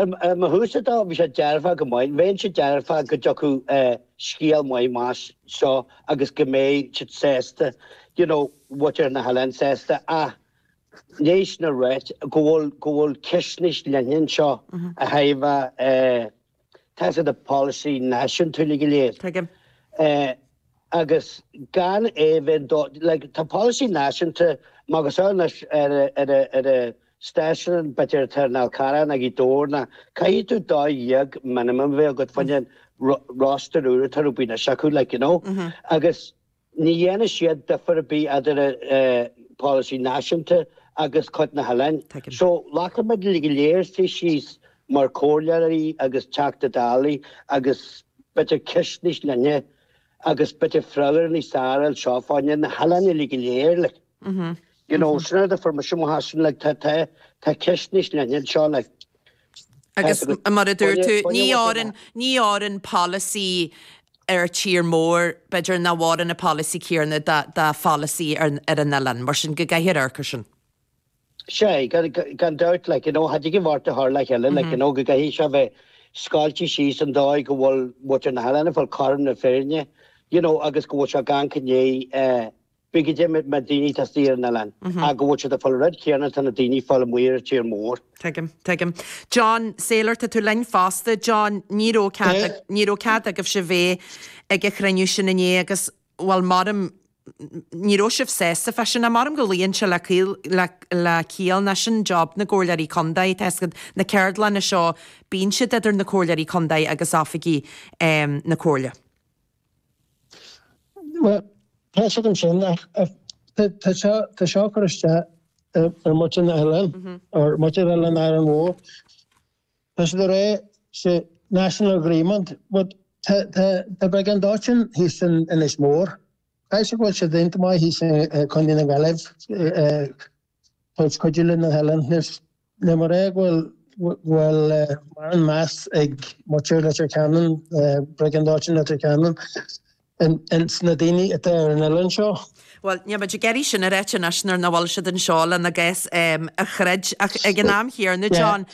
Ó mo thaobhsa dó bhí sé dearfach go maith, bheinnse dearfach go dtiocfadh scéal maith amach as seo agus go mbeidh siad sásta, you know, muintir na hoileáin sásta ach leis sin ráite go bhfuil go bhfuil ceist níos leithne anseo ó thaobh eh, Taifead de pholasaí náisiúnta uilig go léir. Tuigim. Agus gan é bheith do, like, tá polasaí náisiúnta, má agus ann anois ar a, ar a, ar a stáisiún b'fhéidir atá ar an Fhál Carrach nó Gaoth Dobhair nó, caithfidh tú dó dhéag minimum bheith agat faoin roster úr atá ar bun anois acu, like, you know, agus, Ní dhéanann siad difear ar bith idir polasaí náisiúnta agus cuid na hoileáin. So, like caithfimid uilig go léir suí síos mar chomhairleoirí agus Teachta Dálaí agus b'fhéidir ceist níos leithne agus b'fhéidir freagra níos fearr a fháil anseo fá choinne na hoileáin uilig go léir, like. You know, so tá difear mór ansin like, tá, tá, tá ceist níos leithne anseo like. Agus mar a dúirt tú, ní fhóireann, ní fhóireann polasaí ar tír mór, b'fhéidir, nach bhfóireann na polasaí céarna do, do pholasaí ar, ar an oileán, mar sin go gcaithfear amharc air sin. Sea, gan, gan dabht, like, you know, caithfidh an bheart de shár le chéile, like, you know, go gcaithfidh seo bheith scaoilte síos sa dóigh go bhfuil muintir na hoileáin ag fáil cothrom na fírinne, you know, agus go bhfuil seo gan cné, eh, Bhí go deimhin mar daoine atá istigh ar an oileán a go bhfuil siad ag fáil an rud céanna atá na daoine ag fáil amuigh ar tír mór. Tuigim. Tuigim. John, Sailor tá tú linn fosta. John, Ní raibh cead ag, ní raibh cead agaibhse bheith ag an chruinniú sin inné agus, bhuel maram, ní raibh sibh sásta fá sin ach maram go luíonn sé le caol, le, le ciall nó sin job na gComhairleoirí Contae, tá a fhios agat na ceardlanna seo bíonn siad idir na Comhairleoirí Contae agus oifigigh na Comhairle. Bhuel, tá a fhios agam sin ach tá seo tá seo ag cur isteach ar muintir an oileáin, ar muintir oileán Árainn Mhór. Tá siad ag rá it's a national agreement but tá tá tá briogáid dóiteáin thíos in Inis Mór. Caithfidh sé go bhfuil siad iontach maith thíos i Contae na Gaillimh Ag cuidiú leis na hoileáin is níl mé ag rá go bhfuil mórán meas ag muintir Leitir Ceanainn, Briogáid Dóiteáin Leitir Ceanainn, ins na daoine atá ar an oileán seo. Bhuel, níl muid ag iarraidh sin a ráit anois nuair nach bhfuil siad anseo lena gcás a throid ach ag an am chéanna, John,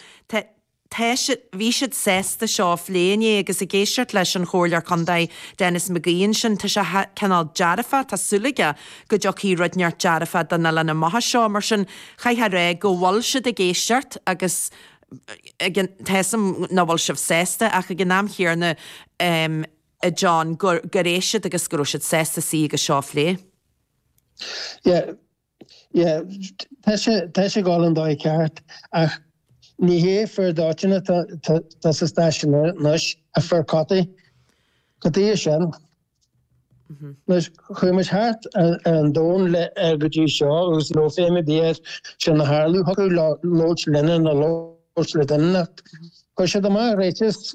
tá siad, bhí siad sásta seo a phlé inné agus ag éisteacht leis an Chomhairleoir Contae Denis McGee ansin, tá sé cineál dearfach, tá súil aige go dtiocfaidh rud inteacht dearfach don oileán amach as seo. Mar sin, chaithfeá a rá go bhfuil siad ag éisteacht agus ag an, tá 'fhios a'm nach bhfuil sibh sásta ach ag an am chéanna a John gur, gur éist siad agus go raibh siad sásta suí agus seo a phlé. Yeah, Tá sé ag dul an dóigh cheart ach ní hé fir dóiteáin atá sa stáisiún anois ach fir chotaí. Go dtí é sin, anois, chuaigh muid thart ar an domhan le go dtí seo agus ní raibh feidhm ar bith air sin a tharlú. Thiocfadh leo labhairt linne nó labhairt le duine ach chuir siad amach ráiteas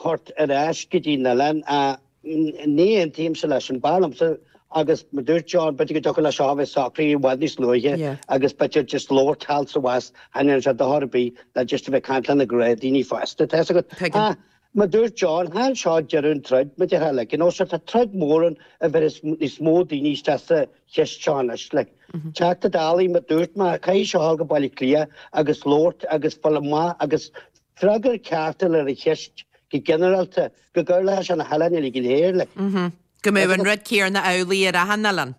thabhairt ar ais go dtí an oileán. Ní aontaímse leis sin. B'fhearr liomsa, agus mar dúirt John, b'fhéidir go dtiocfadh leis seo a bheith socraithe i bhfad níos luaithe agus b'fhéidir just labhairt thall is abhus, thaitníonn sé do chor ar bith ná just a bheith ag caint lena chéile, daoine fásta, tá 'fhios agat. Ach, mar dúirt John, chan seo deireadh an troid, mar a déarfá, like, you know, so tá troid mhór ann a bheidh níos mó daoine istigh sa cheist seo anois, like. Teachta Dálaí, mar dúirt mé, caithfidh seo a ghabháil go Baile Átha Cliath agus labhairt agus fuil a maith agus. Freagra ceart a fháil ar an cheist go ginearálta, go gcuirfí leis na hoileáin uilig go léir, like. Go mbeadh an rud céarna amhlaidh ar achan oileán?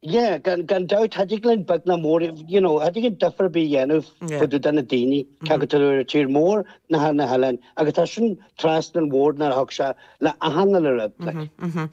Yeah, gan dabht, cha dtig linn beag ná mór, you know, cha dtig linn difear ar bith a dhéanamh eadar na daoine, cé acu atá ar an tír mór ná ar na hoileáin, agus tá sin trasna an bhord nuair a thig sé le achan uile rud, like.